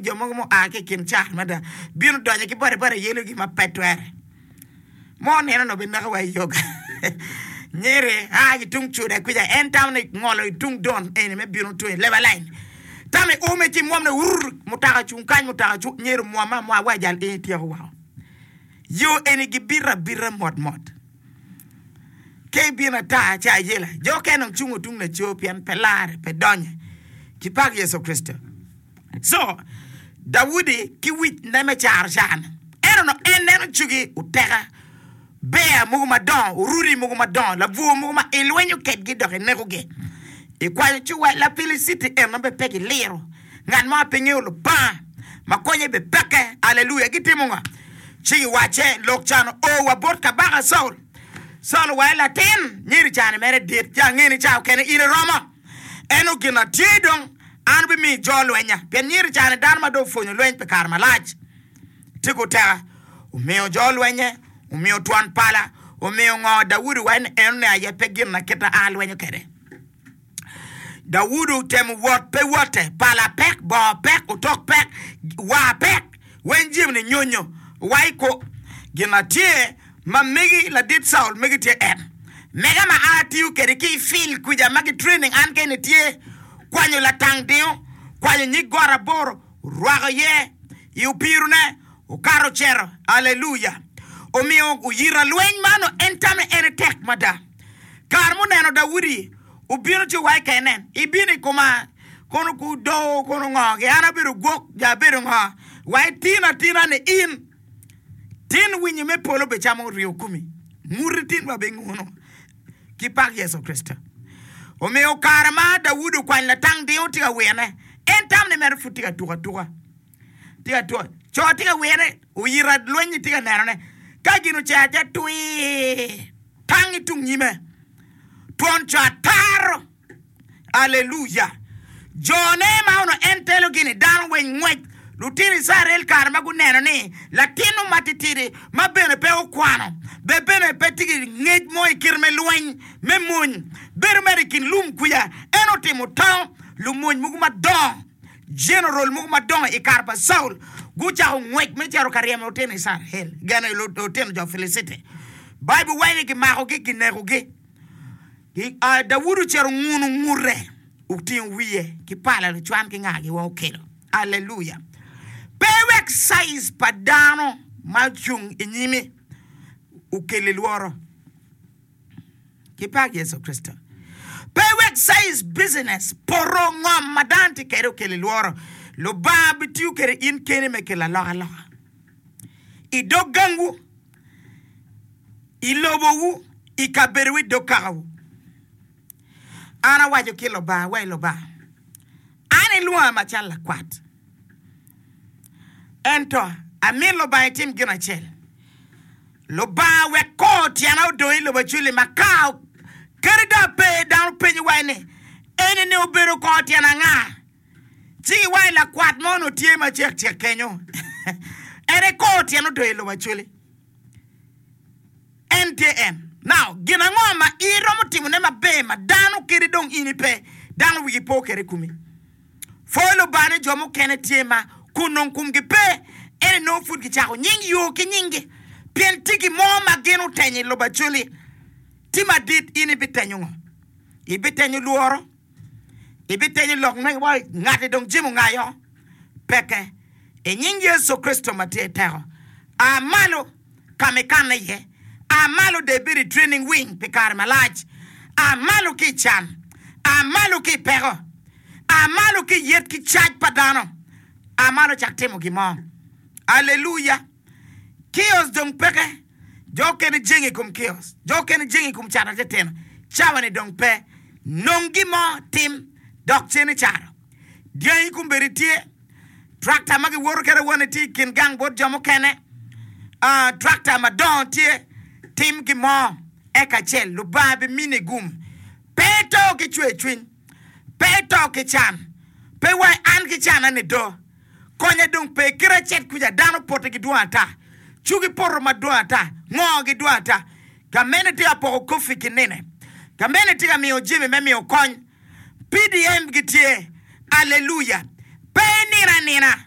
jo mogo ma oa ki i kin cat mada bino donyo ki boti boti yelogi ma pe twere ma oneno ni obineko wa i yoga. Nyiri a ki tung Cuda kwica en tamo ni ngolo i tung Don eni me bino tung i Lebalang. Tamo i ume ci mwomne wur, mutoka cung kany, mutoka cung, nyer omwom ma mwa wa jal ii tyeko woko. Yo eni gibito abita mot mot. Ka ibino ata ci ayela, jo okene dong cungo tung laco pien pe lare pe donye. Kipak Yecu Kricito! Co. Daudi ki wicne me caro can. Ento onongo en neno cogi oteka, bear mogo madongo, oruti mogo madongo, labwor mogo ma ilwenyo kedgi dok inekogi. Ikwayo ci wa, Lapiliciti eno bene pe giliro. Ngat mo ma pe ngeyo Lubanga ma konye bene peke. Aleluya! Gitimo nga? Ci giwacce, Lok can oo wa bot kabaka Caul. Caul owaco, Latin, myero can mere dit. Ci angene caokene in iromo. Eno gin ma tye dong, an abimiyo jo lwenya, pien nyer i kare-ni dano ma dong opwonyo lweny pi kare malac tye ki oteka. Omiyo jo lwenye, omiyo twon pala, omiyo ngo Daudi wa en enoni aye pe gin ma kita a alwenyo kwede. Daudi otemo wot, pe wote, pala pek, bongo pek, otok pek, war pek. Weny Jim-ni nyonyo wa i kwo gin ma tye ma megi ladit Saul megi tye en. Mega ma a tiyo kede ki i fil kwica ma ki training an kene tye kwanyo latang dingo, kwanyo nyig got aboro, rwako ye i opiro ne, okato ocero. Alleluia! Omiyo oyita lweny man o en tame ene tek mada. Kare muneno Daudi obino ci owaci kene, ibino i koma. kono gudoo kono ngo ki an abedo gwok jo abedo ngo wa itin atina ni in tin winyi me polo be camo ryo kumi muti tin wa be ngono ki pak Yecu Kricito omiyo kare ma Daudi okwany latang dingo tye ka wirne en tam ni mere pud tye ka tuk atuka tye ka tuk co tye ka wirne oyito lweny tye ka nenone ka gin ocer acer twir tang itung nyime twon co ataro Alleluya! Jone ma onongo en telogi-ni, dano weng ngwec, lutino Icrael kare ma guneno ni latinnu ma titidi ma bene pe okwano, be bene pe tye ki ngec mo i kite me lweny me mony, bedo mere i kin lum kwica, en otimo tango. Lumony mogo madongo, jeneral mogo madongo i kare pa Caul, gucako ngwec me cito ka ryemo lutino Icrael, gene lutino jo Piliciti. Baibul waco ni gimakogi, ginekogi. I aa Daudi ocito onguno ngute, otingo wiye ki pala lucwan ki ngagi wa okelo. Alleluia! Pe wek size pa dano ma ocung i nyimi okelli lworo. Ki pak Yecu Kricito! Pe wek size business, poto, ngom ma dano tye kwede okelli lworo. Lubanga bitiyo kwede in keni me kelo alokaloka i dog gangu. i lobowu, i kabedowu, i dog kakawu. An awaco ki Lubanga wa i Lubanga, An ilwonga macalo lakwat. Ento amyero Lubanga itim gin acel, Lubanga wek kor tyena odong i lobo acwil-li ma ka kadi dong ape, dano penyo wa ni, Eni-ni obedo kor tyen anga? Ci giwango lakwat mo onongo tye macek cek kenyo, en aye kor tyen odoyo i lobo acwele. En tye en. Now, gin ango ma iromo timone maber ma dano kadi dong in ipe, dano wigi po kwede i komi? Pwoyo Lubanga ni jo mukene tye ma kun nongo kumgi pe, ento nongo pud gicako nying yo ki nyingi, pien tye gin mo ma gin otenyo i lobo acwele. Ti madit, in ibitenyo ngo? Ibitenyo lworo? Ibitenyo lok magi wa, Ngati dong jemo ngayo? Peke! I nying Yecu Kricito ma tye i teko, a malo ka ma ikanne iye. A malo dong ibed i training wing pi kare malac. A malo ki i can. A malo ki i peko. A malo ki i yet ki cac pa dano. A malo cak timo gin mo. Aleluya! Kiosk dong peke. Jo okene jenge i kom kiosk. Jo okene jenge i kom cato tetema. Cawa-ni dong pe. Nong gin mo tim dok cen icato. Dyangi kombeddi tye. Tractor ma giwoto kwede awone tye i kin gang bot jo mukene. Tractor madongo tye. Tim gin mo eka ce Lubanga bimini gum. Pe ito ki cwercwiny. Pe ito ki can. Pe iwai, An ki canna nido. Konye dong pe kite acel kuca, dano pote gidwong ata, cugi poto madwong ata, ngoo gidwong ata. Ka mene tye ka poko koffi ki nine. Ka mene tye ka miyo jami me miyo kony. PDM gitye. Alleluia! Pe inino anina.